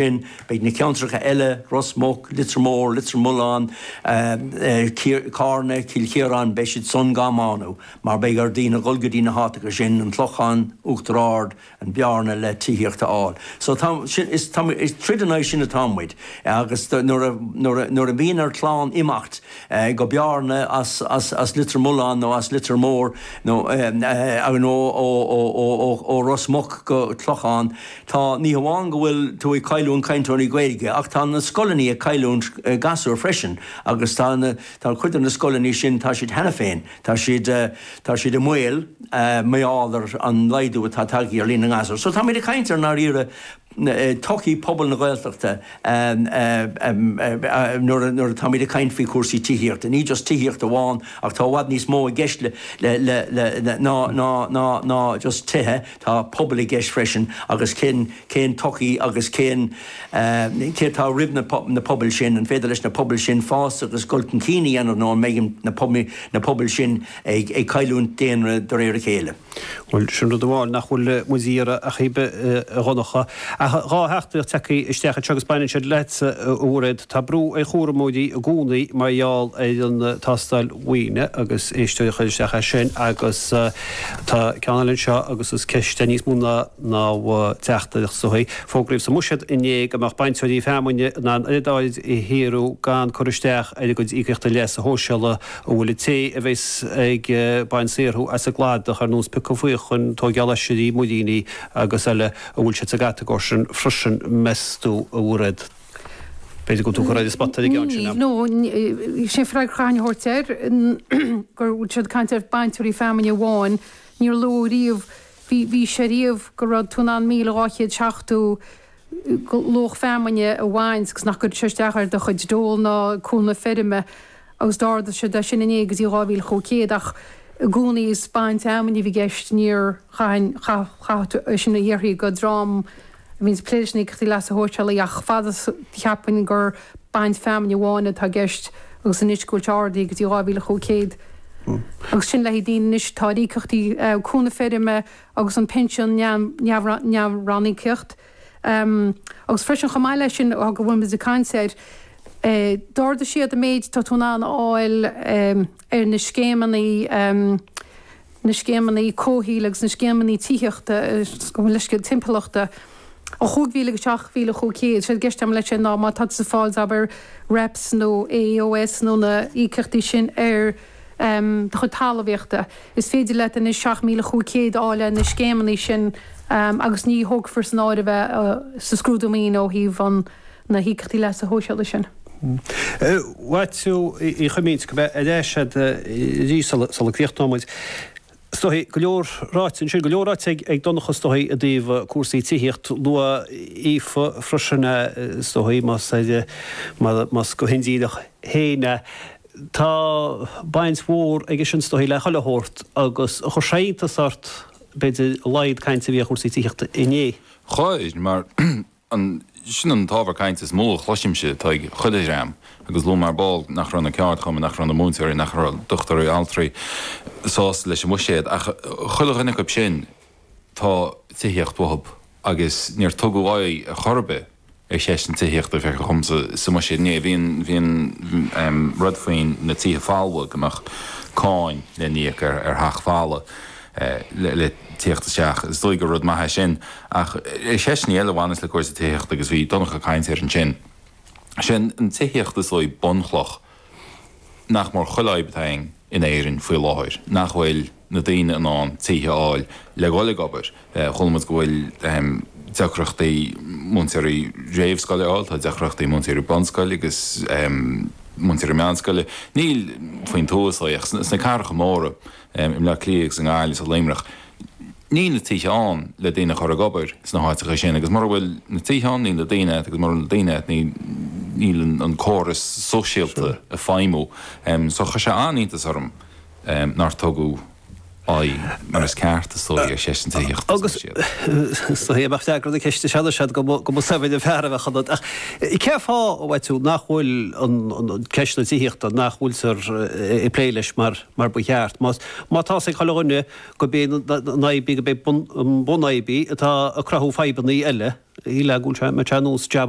sin, beidh na ceantracha eile, Ros Muc, Leitir Móir, Leitir Mealláin, Carna, Cill Chiaráin, beidh siad sin gá mbánú mar beidh ar daoine dhul go dtí na háiteacha sin, an Clochán, Uachtar Ard, an Bearna le tithíocht a fháil. So tá, sin, is, tá muid, is troid in aghaidh sin atá muid agus nuair a, nuair a, nuair a bhíonn ar chlann imeacht go Bearna as, as, as Leitir Mealláin nó as Leitir Móir nó, nó ó, ó, ó, ó, ó, ó Ros Muc go Clochán, Tá, ní hamháin go bhfuil tú ag cailliúint cainteoirí Gaeilge, ach tá na scoileanna ag cailliúint gasúir freisin, agus tá na, tá cuid de na scoileanna sin, tá siad cheana féin, tá siad, tá siad i mbaol mar gheall ar an laghdú atá tagtha ar líon na ngasúr. So táimid ag caint ar ndáiríre todhchaí pobal na Gaeltachta nuair, nuair atáimid ag caint faoi chúrsaí tithíochta, ní just tithíocht amháin, ach tá i bhfad níos mó i gceist le, le, le, le, ná, ná, ná, ná just tithe. Tá pobal i gceist freisin agus cén cén todhchaí agus cén céard atá roimh na na pobail sin, an féidir leis na pobail sin fás agus dul chun cinn a dhéanamh nó an mbeidh an na na pobail sin ag ag cailliúint daonra de réir a chéile. Bhuel, sin rud amháin nach bhfuil muid ag iarraidh ar chaoi ar bith a Dhonncha. Tá dhá theachtaireacht tagtha isteach anseo agus baineann siad leatsa a Mhairéad. Tá brú ar chúramóirí i gcónaí mar gheall ar an tástáil mhaoine agus éisteoir a chuir isteach air sin agus tá ceann eile anseo agus is ceist é níos mó ná ná teachtaireacht sa chaoi. Fógraíodh sa mbuiséad inné go mbeadh bainteoirí feamainne in ann oiread airgid a shaothrú gan cur isteach ar a gcuid íocaíochta leasa shóisialaigh an bhfuil an té a bheas ag baint saothrú as an gcladach ar nós piocadh faochan, tóigeáil oisrí, muiríní agus eile an bhfuil siad sa gcatagóir sin freisin meas tú a Mhairéad. B'fhéidir go dtugtar ar an spota aige ansin. Níl, nó níl sé freagra a thabhairt air go raibh siad ag caint ar bhainteoirí feamainne amháin. Níor luadh riamh, bhí, bhí sé riamh go raibh tú in ann míle dhá chéad seachtó go, luach feamainne a bhaint agus nach gcuirfeadh sé isteach ar do chuid dole ná cúnamh feirme agus d'ardaigh siad é sin inné go dtí dhá mhíle cúig chéad ach i gcónaí is baint feamainne a bhí i gceist, níor, chaithfinn, chaith, chaithfeadh tú é sin a iarrtha go, go dtrom. A bhíonns ag plé leis na Íocaíochtaí Leasa Shóisialaigh ach fad is cheapfainn gur baint feamainne amháin atá i gceist agus anois go bhfuil sé ardaithe go dtí 2,500 agus sin le haghaidh daoine anois tá ar íocaíochtaí cúnamh feirme agus an pinsean neamh-ranníocaíoch agus freisin chomh maith leis sin go bhfuil muid ag caint air d'ardaigh siad an méid tá tú in ann a fháil ar na scéimeanna, na scéimeanna comhshaoil agus na scéimeanna tithíochta, leithscéal, timpeallachta, ó 5,000 go 7,500. Séard atá i gceist agam leis sin ná má tá tú ag fáil, abair, REPS nó AEOS nó na híocaíochtaí sin as do chuid talmhaíochta, is féidir leat anois 7,500 a fháil ó na scéimeanna sin agus ní thógfar san áireamh é sa scrúdú maoine ó thaobh an na híocaíochtaí leasa shóisialaigh sin. A Mháirtín Uí Choimín, beidh mé ar ais agat arís sula gcríochnóidh muid. Is dóichí, go leor ráite ansin, go leor ráite ag Donncha is dóichí i dtaobh cúrsaí tithíocht. Luaigh Aoife freisin é, is dóichí, más ar, más go hindíreach féin é, tá baint mhór aige sin is dóichí le chuile shórt agus chuir sé iontas ort b'fhéidir a laghad cainte a bhí ar chúrsaí tithíochta inné. Chuir, mar An, sin an t-ábhar cainte is mó a chloisimse, atá ag chuile dhream, agus luaigh mé ar ball nach raibh na ceardchumainn, nach raibh na múinteoirí, nach raibh dochtúirí, altraí sásta leis an bhuiséad, ach chuile dhuine acu sin tá tithíocht uathub agus níor tugadh aghaidh ar chor ar bith ar cheist na tithíochta, feictear dhomsa, sa mbuiséad inné, bhí an, bhí an rud faoin na tithe folmha go mbeadh cáin le n-íoc ar theach folamh. le theacht isteach. Is dóigh gur rud maith é sin. Ach ar cheisteanna eile a bhaineas le cúrsaí tithíochta, agus bhí Donncha ag caint air ansin, is í an tithíocht is dóigh bunchloch nach mór chuile fhadhb atá againn in Éirinn faoi láthair, nach bhfuil na daoine in ann tithe a fháil le dhul ag obair. Chuala muid go bhfuil deacrachtaí múinteoirí réamhscoile a fháil, tá deacrachtaí múinteoirí bunscoile agus múinteoirí meánscoile. Ní faoin tuath is dóigh ach sna cathracha móra. i mBleá Cliath agus i nGaillimh is i Luimneach níl na tithe ann le daoine a chur ag obair sna háiteacha sin agus mura bhfuil na tithe ann níl na daoine agat agus mura bhfuil na daoine agat níl an córas sóisialta ag feidhmiú so chuir sé an-iontas orm nár tugadh aghaidh mar is ceart is dóigh ar cheist an tithíochta agus is dóigh dá mbeadh freagra na ceiste sin agat go mba go mba saibhir an fear a bheadh ionat ach cén fáth a Mháirtín nach bhfuil an ceist na tithíochta nach bhfuiltear ag plé leis mar. mar ba cheart. Má tá a fhios ag chuile dhuine gurb é an an-fhadhb í, gurb é bun an bhunfhadhb í atá ag cruthú fadhbanna eile. Síleann go bhfuil sé, mbeidh sé anuas jab